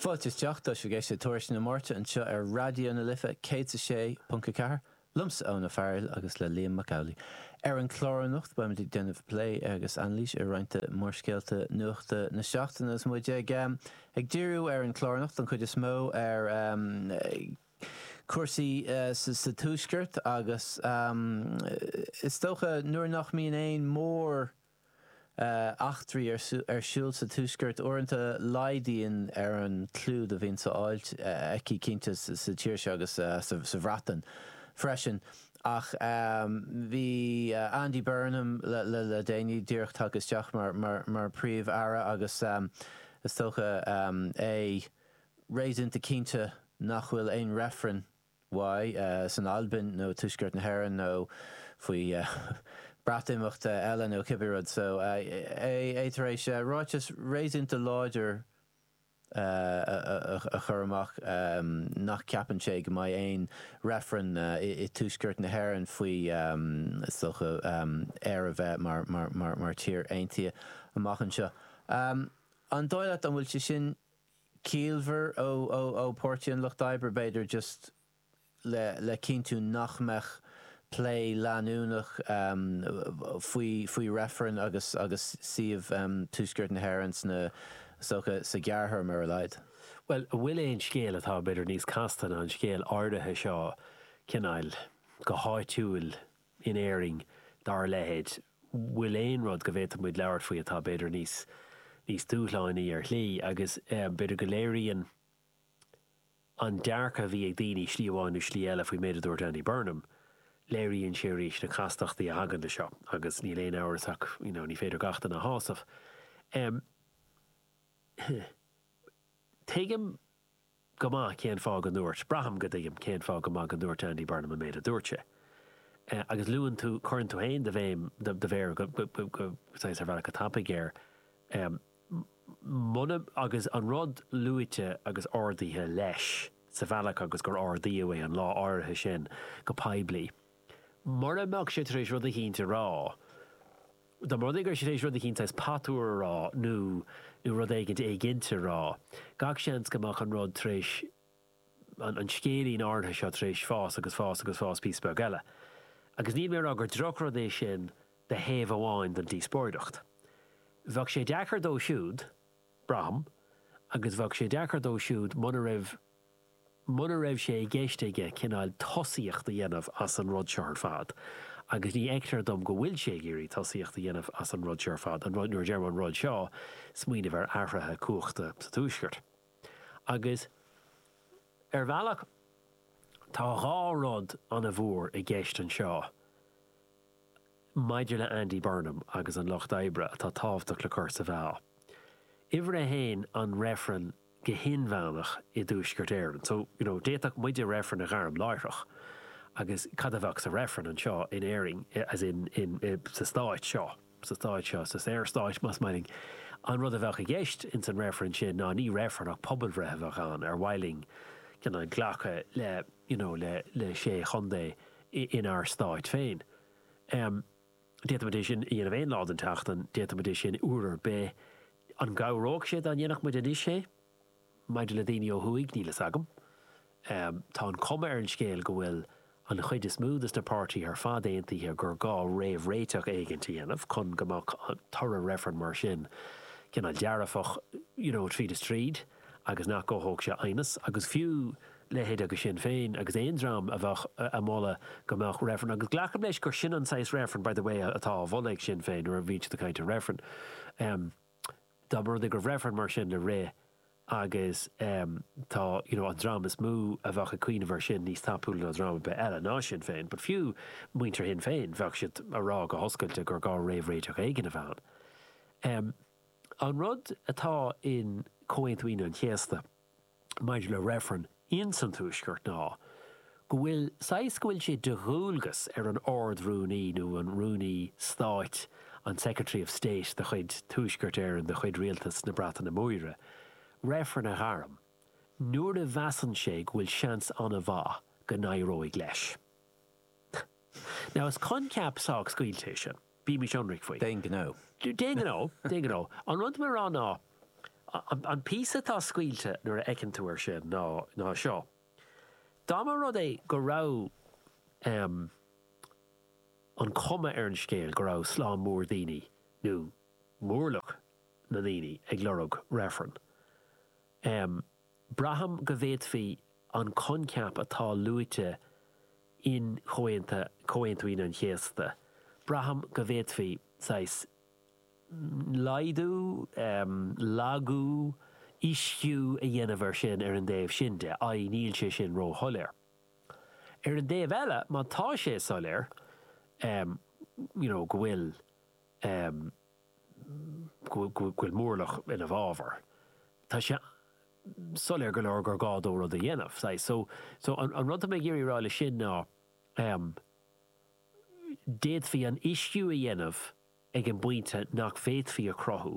Fáilte isteach, tá sibh ag éisteacht le Tuairisc na Máirte anseo ar Raidió na Life 106.4, liomsa Eoin Ó Fearghaíl agus le Liam Mac Amhlaigh. Ar an chlár anocht beimid ag déanamh plé agus anailís ar roinnt de mhórscéalta nuachta na seachtaine agus muid ag ag díriú ar an chlár anocht don chuid is mó ar chúrsaí sa Tuaisceart agus is dócha nuair nach mbíonn aon mhórscéal eachtraí ar siúl sa Tuaisceart. Uaireanta laghdaíonn ar an clúdach a bhíonn le fáil aici cinnte sa tír seo agus sa Bhreatain freisin. Ach bhí Andy Burnham le déanaí díreach tagtha isteach mar Príomh-Aire agus is dócha é réasúnta cinnte nach bhfuil aon reifreann uaidh, san Albain nó Tuaisceart na hÉireann nó faoi Breatimeachta eile nó cibé rud so, é tar éis ráiteas réasúnta láidir a chur amach nach gceapann sé go mbeidh aon reifreann i Tuaisceart na hÉireann faoi thodhchaí Éire bheith mar tír aontaithe amach anseo. An dóigh leat an bhfuil sé sin ciallmhar ó Páirtí an Lucht Oibre, b'fhéidir, just le cinntiú nach mbeadh plé leanúnach faoi faoi reifreann agus agus suíomh Tuaisceart na hÉireann sa todhchaí sa ghearrthéarma ar a laghad. Bhuel, an bhfuil aon scéal atá b'fhéidir níos casta ná an scéal áirithe seo, cineál, go háitiúil, in Éirinn dá leithéid, bhfuil aon rud go bhféadfadh muid labhairt faoi atá, b'fhéidir, níos níos dúshlánaí ar shlí agus b'fhéidir go léiríonn an dearcadh a bhí ag daoine slí amháin nó slí eile faoin méid a dúirt Andy Burnham, léiríonn sé arís na castachtaí a thagann le seo agus níl aon amhras ach you know ní féidir gach duine a shásamh. Em. Tuigim. go maith cén fáth go ndúirt. braithim go dtuigim cén fáth go maith go ndúirt Andy Burnham an méid a dúirt sé. Agus luann tú, cuireann tú féin do bhéim, do mhéar go, go, saghas ar bhealach go tapaidh air. Muna, agus an rud luaite agus ardaithe leis sa bhealach agus gur ardaíodh é an lá áirithe sin go poiblí, mura mbeadh sé tar éis rud eicínt a rá, dá mba rud é go raibh sé tar éis rud eicínt saghas patuar a rá nó nó rud éigint éiginnte a rá, gach seans go mbeadh an rud tar éis, an an scéilín áirithe seo tar éis fás agus fás agus fás píosa beag eile. Agus níl mé a rá gur drochrud é sin de thaobh amháin den díospóireacht. Bheadh sé deacair dó siúd, braithim, agus bheadh sé deacair dó siúd muna raibh, mura raibh sé i gceist aige cineál tosaíocht a dhéanamh as an rud seo ar fad, agus ní fheictear dom go bhfuil sé ag iarraidh tosaíocht a dhéanamh as an rud seo ar fad, nuair a deirim an rud seo, smaoineamh ar athruithe cumhachta sa Tuaisceart. Agus ar bhealach, tá dhá rud an-mhór i gceist anseo maidir le Andy Burnham agus an Lucht Oibre atá tábhachtach le cur sa mheá. Uimhir a haon, an reifreann. go hinmheánach i dTuaisceart Éireann. So, you know, d'fhéadfadh muide reifreann a ghairm láithreach agus cad a bheadh sa reifreann anseo in Éirinn, as in, in, i, sa stáit seo, sa stáit seo, sa saorstáit, más maith linn. An rud a bheadh i gceist in san reifreann sin ná ní reifreann ach pobalbhreith a bheadh ann ar mhaith linn glacadh le, you know, le, le sé chontae in ár stáit féin. Em. D'fhéadfaimid é sin a dhéanamh aon lá den tseachtain, d'fhéadfaimid é sin uair ar bith. An gcabhródh sé dá ndéanfadh muid anois é? Maidir le daoine ó thuaidh, níl fhios agam. Tá an chuma ar an scéal go bhfuil an chuid is mó des na páirtithe ar fad aontaithe gur gá réamhréiteach éigint a dhéanamh chun go mbeadh toradh reifrinn mar sin cineál dearfach, you know, tríd is tríd agus nach gcothódh sé aighneas agus fiú, leithéidí Sinn Féin agus aon dream a bheadh a mholadh go mbeadh reifreann, agus glacaim leis gur sin an saghas reifrinn, by the way, atá á mholadh ag Sinn Féin nuair a bhíonn siad ag caint ar reifreann. Dá mba rud é go raibh reifreann mar sin le rith agus tá you know an dream is mó a bheadh ag cuimhneamh air sin níos tapúla ná dream ar bith eile, ná Sinn Féin, but fiú muintir Shinn Féin, bheadh siad a rá go hoscailte gur gá réamhréiteach éigin a bheith ann. An rud atá in Comhaontú Aoine an Chéasta, maidir le reifreann ins an Tuaisceart ná go bhfuil saghas go bhfuil sé de dhualgas ar an Ard-Rúnaí nó an Rúnaí Stáit, an Secretary of State de chuid Tuaisceart Éireann, de chuid Rialtas na Breataine Móire, reifreann a ghairm nuair a mheasann sé go bhfuil seans an-mhaith go n-éireoidh leis. Now is coincheap sách scaoilte é sin. Bímis ionraic faoi. D'aon ghnó. D'aon ghnó. D'aon ghnó. An rud atá mé a rá ná, an píosa atá scaoilte nuair a fheiceann tú ar sin ná seo. Dá mba rud é go raibh an chuma ar an scéal go raibh slám mór daoine, nó mórlach na ndaoine, ag lorg reifreann, Braithim go bhféadfaí an coincheap atá luaite in Comhaonta, Comhaontú Aoine an Chéasta, braithim go bhféadfaí saghas laghdú, lagú, uisciú a dhéanamh air sin ar an dtaobh sin de, i. níl sé sin ró-shoiléir. Ar an dtaobh eile, má tá sé soiléir, you know, go bhfuil, go bhfuil mórlach ina bhfabhar. Tá sé soiléir go leor gur gá dó rud a dhéanamh. So, an rud atá mé ag iarraidh a rá leis sin ná, d'fhéadfaí an t-uisciú a dhéanamh ag an bpointe nach bhféadfaí a chruthú.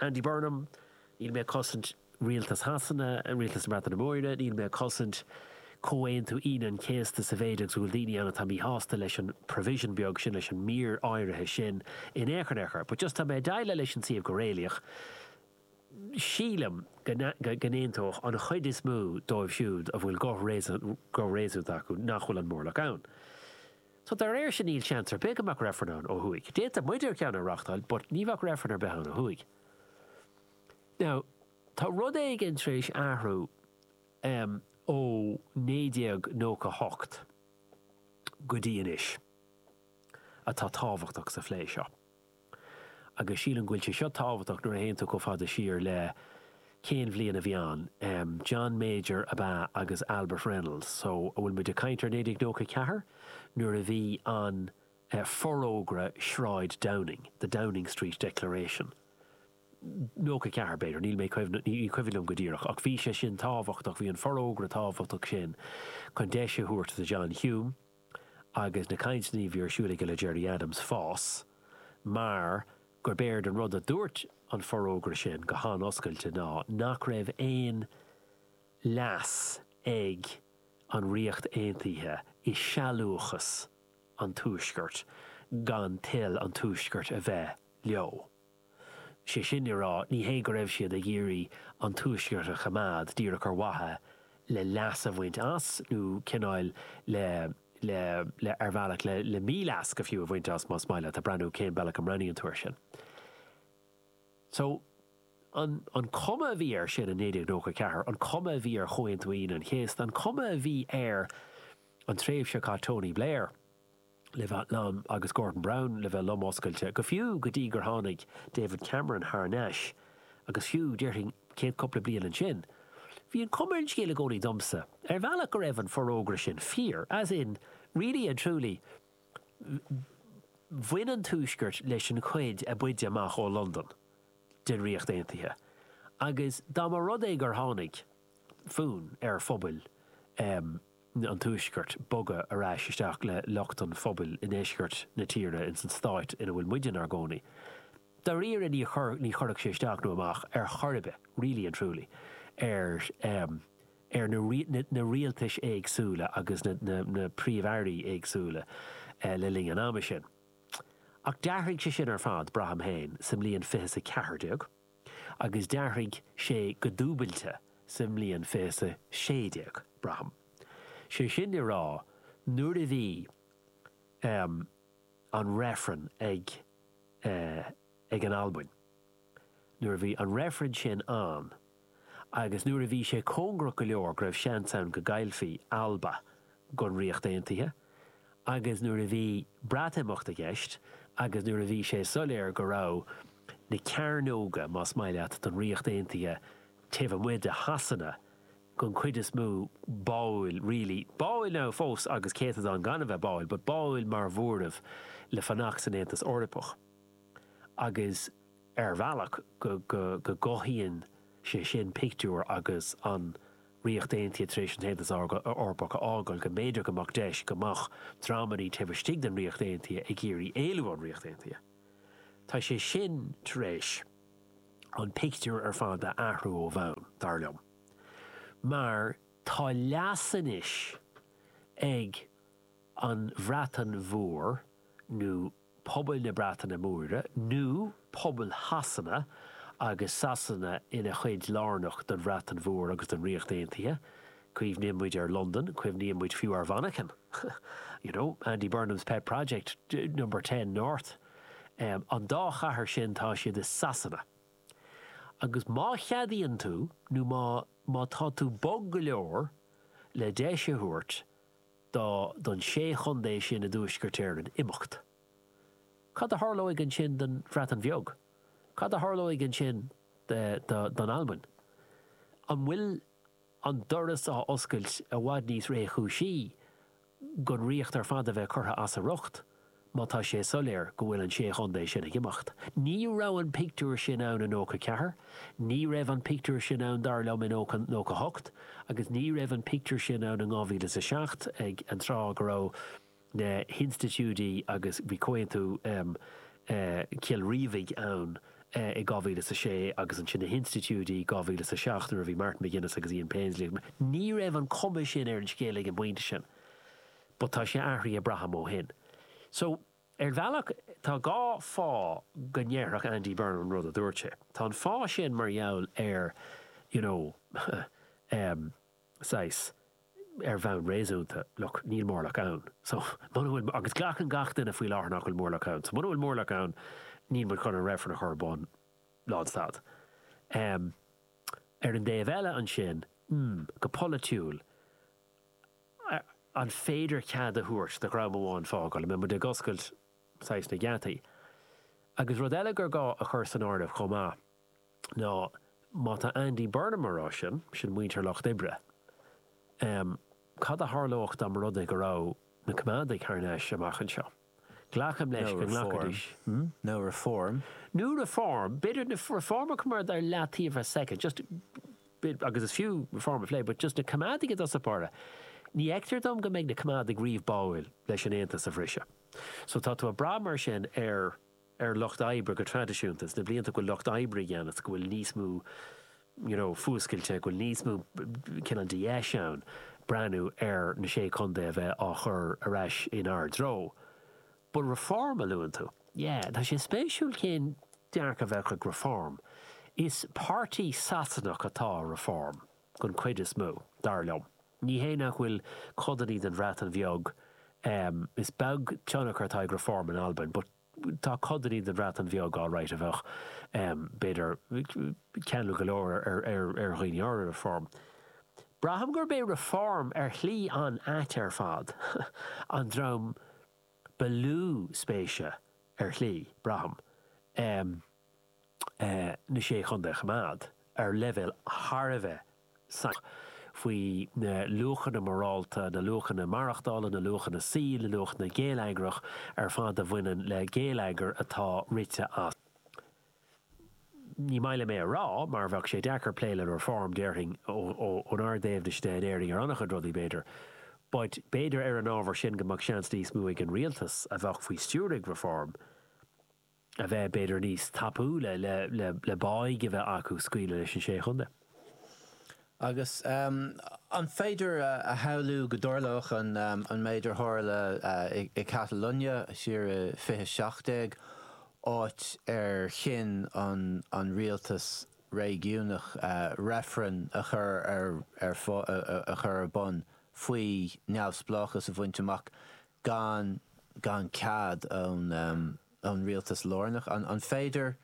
Andy Burnham, Níl mé ag cosaint Rialtas Shasana, Rialtas na Breataine Móire, níl mé ag cosaint Comhaontú Aoine an Chéasta sa mhéid agus go bhfuil daoine ann atá míshásta leis an provision beag sin, leis an mír áirithe sin in aon chor, in aon chor. But just tá mé ag déileáil leis an suíomh go réalaíoch. Sílim go n-aontódh an chuid is mó díobh siúd a bhfuil guth réasúnta acu nach bhfuil an mórlach ann. So dá réir sin níl seans ar bith go mbeadh reifreann ann ó thuaidh. D'fhéadfadh muidne ceann a reáchtáil but ní bheadh reifreann ar bith ann ó thuaidh. Now tá rud éigin tar éis athrú em ó 1998 go dtí anois atá tábhachtach sa phlé seo. agus sílim go bhfuil sé seo tábhachtach nuair a théann tú chomh fada siar le, cén bhliain a bhí ann? John Major ab ea agus Albert Reynolds so an bhfuil muid ag caint ar 1994 nuair a bhí an Forógra Sráid Downing, The Downing Street Declaration? 94 b'fhéidir, níl mé ag cuimhneamh, ní cuimhin liom go díreach ach bhí sé sin tábhachtach, bhí an forógra tábhachtach sin chun deis a thabhairt do John Hume, agus na cainteanna a bhí ar siúl aige le Gerry Adams, fás, mar gurb éard an rud a dúirt an forógra sin go han-oscailte ná nach raibh aon leas ag an Ríocht Aontaithe i sealúchas an Tuaiscirt gan toil an Tuaiscirt a bheith leo. Is é sin le rá, ní hé go raibh siad ag iarraidh an Tuaisceart a choimeád díreach ar mhaithe le leas a bhaint as nó cineál le, le, le, ar bhealach, le, le míleas go fiú a bhaint as, más maith leat, ag brath cén bealach a mbreathnaíonn tú air sin. So, an, an chuma a bhí air sin i 1994, an chuma a bhí ar Chomhaontú Aoine an Chéasta, an chuma a bhí ar an tréimhse a chaith Tony Blair, le bheith lom, agus Gordon Brown le bheith lom oscailte, go fiú go dtí gur tháinig David Cameron thar n-ais agus fiú, déarfainn, céad cúpla bliain ansin, bhí an cuma ar an scéal i gcónaí domsa, ar bhealach go raibh an forógra sin fíor, as in, really and truly, bhain an Tuaisceart leis an chuid a b'fhaide amach ó Londain den Ríocht Aontaithe agus dá mba rud é gur tháinig, fonn ar phobail an tuaiscirt bogadh ar ais isteach le lucht an phobail i ndeisceart na tíre ins an stáit ina bhfuil muide 'nár gcónaí. Dáiríre ní chuirfeadh sé isteach nó amach ar chor ar bith, really and truly, ar na rialtais éagsúla agus na príomh-airí éagsúla le linn an ama sin. Ach d'athraigh sé sin ar fad, braithim féin, sa mbliain fiche is a ceathair déag. agus d'athraigh sé go dúbailte sa mbliain fiche is a sé déag, braithim. Sé sin le rá, nuair a bhí ehm, an reifreann ag eh, ag an Albain, nuair a bhí an reifreann sin ann agus nuair a bhí sé cóngarach go leor go raibh seans ann go gcaillfí Alba, don Ríocht Aontaithe agus nuair a bhí Breatimeacht i gceist agus nuair a bhí sé soiléir go raibh na cearnóga, más maith leat, den Ríocht Aontaithe taobh amuigh de Shasana, den chuid is mó, báúil, really, báúil now fós agus céatadán gan a bheith báúil, but báúil mar mhóramh le fanacht san Aontas Eorpach agus ar bhealach go gcothaíonn sé sin pictiúr agus an. Ríocht Aontaithe tar éis an tAontas Eorpach a fhágáil go mb'fhéidir go mbeadh deis go mbeadh dreamannaí taobh istigh den Ríocht Aontaithe ag iarraidh éalú ón Ríocht Aontaithe. Tá sé sin tar éis an pictiúr ar fad a athrú ó bhonn, dar liom, mar tá leas anois ag an Bhreatain Mhór nó, pobail na Breataine Móire nó pobail Shasana agus Sasana ina chuid lárnach den Bhreatain Mhór agus den Ríocht Aontaithe, cuimhníonn muid ar Londain, cuimhníonn muid fiú ar Mhanchain, you know, Andy Burnham's pet project, Number Ten North, an dá chathair sin tá siad i Sasana. Agus má cheadaíonn tú nó má tá tú bog go leor le deis a thabhairt, dá don sé chontae sin i dTuaisceart Éireann imeacht. Cad a tharlóidh ansin don Bhreatain Bheag? Cad a tharlóidh ansin don Albain? An bhfuil an doras á oscailt i bhfad níos réchúisí don Ríocht ar fad a bheith curtha as a riocht? má tá sé soiléir go bhfuil an Sé Chontae sin ag imeacht. Ní raibh an pictiúr sin ann i nócha ceathair, ní raibh an pictiúr sin ann dar liom i nócha hocht agus ní raibh an pictiúr sin ann in 2007 ag an tráth go raibh na hinstitiúidí agus bhí Comhaontú Chill Rímhinn ann i 2006 agus ansin na hinstitiúidí i 2007 nuair a bhí Martin McGuinness agus Ian Paisley ní raibh an chuma sin ar an scéal ag an bpointe sin. but tá sé athraithe, braithim, ó shin. So, ar bhealach, tá dhá fáth go ndéarfadh Andy Burnham an rud a dúirt sé. Tá an fáth sin mar gheall ar, you know, em, saghas, ar bhonn réasúnta, look, níl mórlach ann. So, muna bhfuil, agus glacann gach duine faoi láthair nach bhfuil mórlach ann, so muna bhfuil mórlach ann, níl muid chun an reifreann a chur ar bun, lánstad. Em, ar an dtaobh eile ansin, mm, go polaitiúil, an féidir cead a thabhairt do dhream amháin fágáil, an mbeidh muid ag oscailt saghas na geataí? Agus rud eile gur gá a chur san áireamh chomh maith ná má tá Andy Burnham ar ais, sin muintir Lucht Oibre, cad a tharlódh dá mba rud é go raibh na Coimeádaigh thar n-ais amach anseo? Glacaim leis go nglacfaidís. Nó Reform. Nó Reform. B'fhéidir Reform a choimeád ar leataobh ar soicind, just, agus is fiú reform a phlé, but just na coimeádaigh i dtosach báire, ní fheictear dom go mbeidh na coimeádaigh riamh báúil leis an Aontas a bhriseadh. So tá tú ag brath mar sin ar. ar lucht oibre go traidisiúnta sna blianta go bhfuil lucht oibre i gceannas, go bhfuil níos mó you know fuascailte, go bhfuil níos mó cineál de dheis ann breathnú ar na Sé Chontae a bheith á gcur ar ais in ár dtreo. But reform a luann tú. Yeah, tá sé spéisiúil cén dearcadh a bheadh ag Reform. Is páirtí Sasanach atá i Reform. den chuid is mó, dar liom. Ní hé nach bhfuil codannaí den Bhreatain Bheag em is beag tionchar atá ag Reform in Albain but tá codannaí den Bhreatain Bheag alright a bheadh em b'fhéidir ceanúil go leor ar ar ar dhaoine áirithe Reform. Braithim gurb é Reform ar shlí an-ait ar fad an dream ba lú spéise ar shlí, braithim. Em. na Sé Chontae a choimeád ar leibhéal thar a bheith sainiúil faoi na luachanna morálta, na luachanna maireachtála, na luachanna saoil, na luachanna geilleagrach ar fad a bhaineann le geilleagar atá rite as. Ní maith liom é a rá mar bheadh sé deacair plé le Reform, déarfainn, ónár dtaobhna de in Éirinn ar an-chuid rudaí, b'fhéidir. But b'fhéidir ar an ábhar sin go mbeadh seans níos mó ag an rialtas a bheadh faoi stiúir ag Reform, a bheith b'fhéidir níos tapúla le báidh a bheith acu scaoileadh leis na Sé Chontae. Agus an féidir a shamhlú go dtarlódh an méid ar tharla i Catalunya siar i 2017, áit ar chinn an rialtas réigiúnach reifreann a chur ar a chur ar bun faoi neamhspleáchas a bhaint amach gan gan cead ón. ón rialtas lárnach. An féidir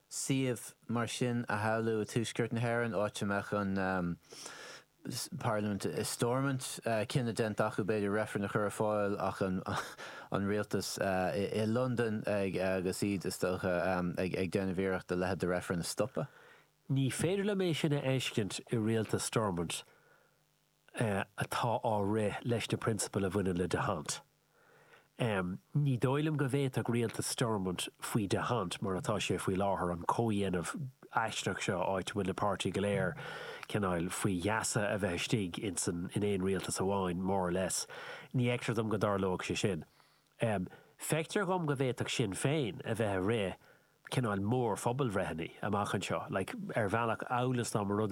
suíomh mar sin a shamhlú i dTuaisceart na hÉireann, áit a mbeadh an parlaimint i Stormont, cinneadh déanta acu b'fhéidir reifreann a chur ar fáil ach an rialtas i Londain agus iad is dócha ag déanamh iarracht a leithéid de reifreann a stopadh? Ní féidir liom é sin a fheiscint i rialtas Stormont. atá á rith leis na prionsabail a bhaineann le D'Hondt. Ní dóigh liom go bhféadfadh rialtas Stormont faoi D'Hondt mar atá sé faoi láthair an comhdhéanamh aisteach seo áit a bhfuil na páirtithe go léir cineál faoi gheasa a bheith istigh ins an in aon rialtas amháin, more or less. Ní fheictear dom go dtarlódh sé sin. Feictear dhom go bhféadfadh Sinn Féin a bheith ag rith cineál mór-phobalbhreitheanna amach anseo, like ar bhealach amhail is dá mba rud é,